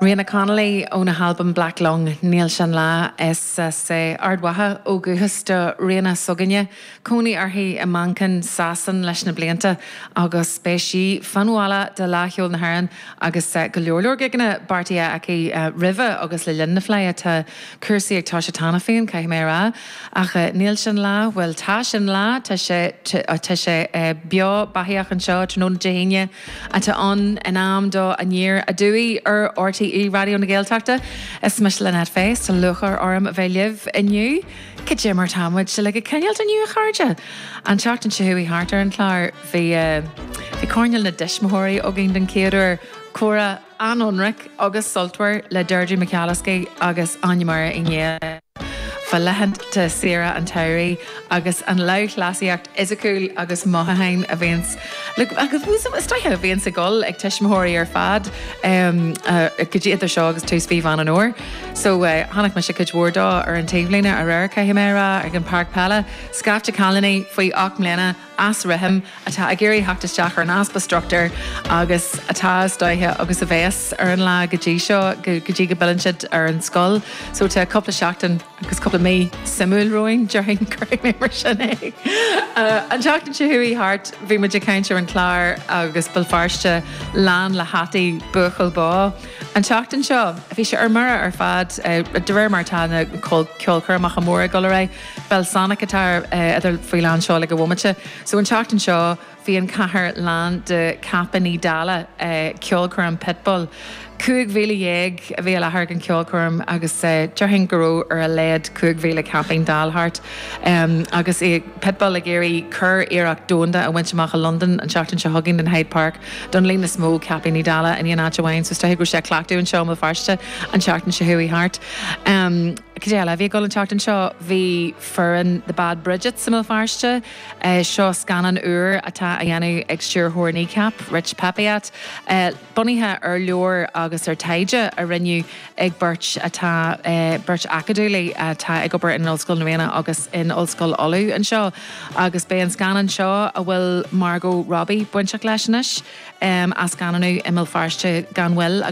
Riona Connolly óna halbam Black Lung, Níl Sé ina Lá, as Ard Mhacha ó dhúchas do Riona s'againne, cónaí uirthi i Manchain Shasana leis na blianta agus beidh sí fan bhaile do Fhleadh Cheoil na hÉireann agus go leor leor gigeanna beartaithe aici roimhe agus le linn na Fleidhe. Tá cúrsaí ag, tá sé cheana féin, caithfidh mé a rá, ach níl sé ina lá, bhuel tá sé ina lá, tá sé, tá sé beo beathaíoch anseo tráthnóna Dé hAoine, atá ann in am do Aniar Aduaidh ar RTÉ Raidió na Gaeltachta. Is mise Lynette Fay, is, tá lúcháir orm a bheith libh inniu. Cad é mar tá muid sibh uilig ag coinneáilt inniu a chairde? An tseachtain seo chuaigh thart ar an chlár, bhí coirnéal na dtuismitheoirí againn don chéad uair, comhrá, an-ionraic agus sultmhar le Deirdre McAliskey agus Áine-Máire Uí Néill fá laethanta saoire an tsamhraidh agus an lúthchleasaíocht fhisiciúil agus mhothúchánach a bhíonns ag dul ag tuismitheoirí ar fad go dtí idir seo agus tús mhí Mheán an Fhómhair. So, chonaic mise cuid mhór de ar an taobhlíne aréir, caithfidh mé a rá, ag an pháirc peile. Scaifte cailíní faoi ocht mbliana. as rithim, atá ag iarraidh a theacht isteach ar an easpa struchtúir agus atá istigh agus a bheas ar an lá go dtí seo, go dtí go bpilleann siad ar an scoil. So tá cúpla seachtain agus cúpla mí suimiúil romhainn déarfainn, cuirfidh mé mar sin é. An tseachtain seo chuaigh thart bhí muid ag caint ar an chlár agus Béal Feirste lán le hataí Buachaill Bó. An tseachtain seo bhí sé ar mire ar fad de réir mar atá na ceolchoirmeacha móra ag dul ar aghaidh. Belsonic atá idir, faoi lán seoil ag an bhomaite. So an tseachtain seo bhí an chathair lán de chaipíní dealla, ceolchoirm Pitbull. Cúig mhíle dhéag a bhí i láthair ag an ceolchoirm agus déarfainn go raibh ar a laghad cúig mhíle caipín Dala thart. Agus é Pitbull ag iarraidh curiarracht domhanda a bhaint amach i Londain an tseachtain seo chugainn in Hyde Park don líon is mó caipíní Dala in aon áit amháin. So is dóiche go raibh sé ag cleachtadh anseo i mBéal Feirste an tseachtain seo chuaigh thart. Cad é eile a bhí ag dul an tseachtain seo? Bhí foireann The Bad Bridgets i mBéal Feirste. Seo scannán úr atá á dhéanamh ag stiúrthóir Kneecap, Rich Peppiatt, bunaithe ar leabhar agus ar taighde a rinneadh ag beirt atá, beirt acadúlaí atá ag obair in Ollscoil na Ríona agus in Ollscoil Uladh anseo. Agus beidh an scannán seo, a bhfuil Margot Robbie bainteach leis anois, á scannánú i mBéal Feirste gan mhoill.